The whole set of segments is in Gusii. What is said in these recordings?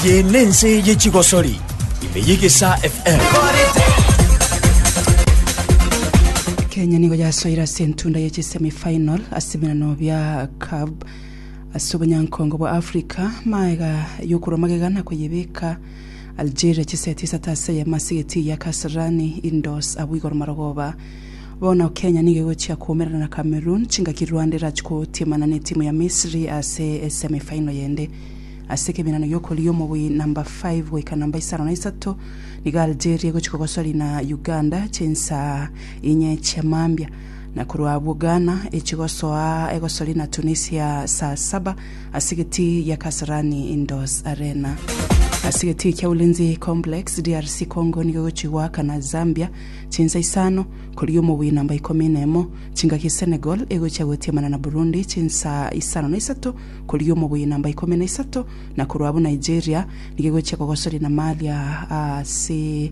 Eye nense ye chigosori ime y'egesa FM. kenya nigo yasoire ase entunda ye chisemi final ase emerano bia cab ase obonyankongo bwa africa maega yokorwa magega na koyebeka Algeria chiseti isato ase eyemo ase egetiiri gia Kasarani indoors abwo igoro marogoba. Bono Kenya nigo egochia koumerana na Cameroon chingaki Rwanda erachie kotiemana netimu ya Misiri ase esemi faino yende. Ase ekeminano gi'okorigia omobui number five goika number isano na isato nigo Algeria egochia kogosori na Uganda chinsaa inye chia mambia. Nakorwa abwo Ghana echigosoa egosori na Tunisia saa saba. Ase egeti gia Kasarani Indoors Arena. Ase egeti kia Ulinzi Complex, DRC Congo nigo egochigwa kana Zambia chinsa isano, koria omobui namba ikomi na emo, chingaki Senegal egochia gotiamana na Burundi chinsa isano na isato, koria omobui namba ikomi na isato, na korwa abwo Nigeria nigo egochia kogosoria na Malia ase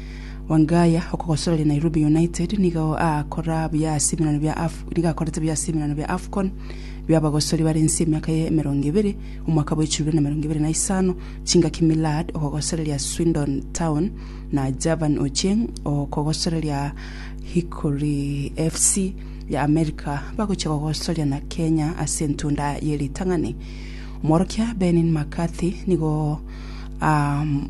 Wangaya okogosororia Nairobi United nigo agakora buya ase emerano bia Af nigo akorete buya ase emerano bia Afcon bia abagosori bare nse emiaka ye emerongo ebere omwaka bwa echumi bibere na emerongo ebere na isano chingaki Millard ogogosoreria Swindon Town na Javan Ochieng okogosoreria Hickory FC ya America bagochia gogosoria na Kenya ase entunda ye ritang'ani. Omworokia Benin McCarthy nigo um,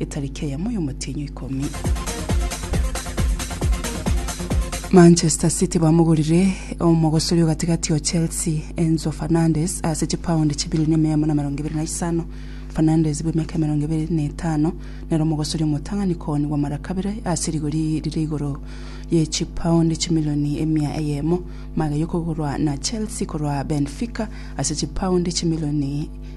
Etariki eyemo y'omotienyi oikomi. Manchester City bamogorire omogosori o gati-gati o Chelsea Enzo Fernandes ase chipaundi chibilioni ime yamo na emerongo ebere na isano. Fernandes bw'emiaka emerongo ebere na etano nere omogosori omotang'ani kooni bw'amara kabere ase rigori rire igoro ye chipaundi chimilioni emia eyemo, magega y'okogorwa na Chelsea korwa Benfica ase chipaundi chimilioni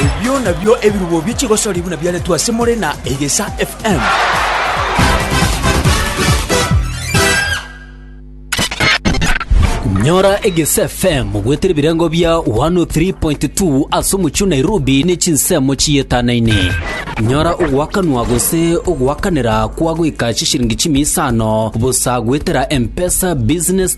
Ebio nabio ebirubo bie chigosori buna biaretwe ase more na Egesa FM. Nyora Egesa FM gwetera ebirengo bia 103.2 ase omochie o Nairobi ne chinsemo chietanaine. Nyora ogoakanwa gose ogoakanera kwa goika chishiringi chimia isano bosa gwetera M-Pesa Business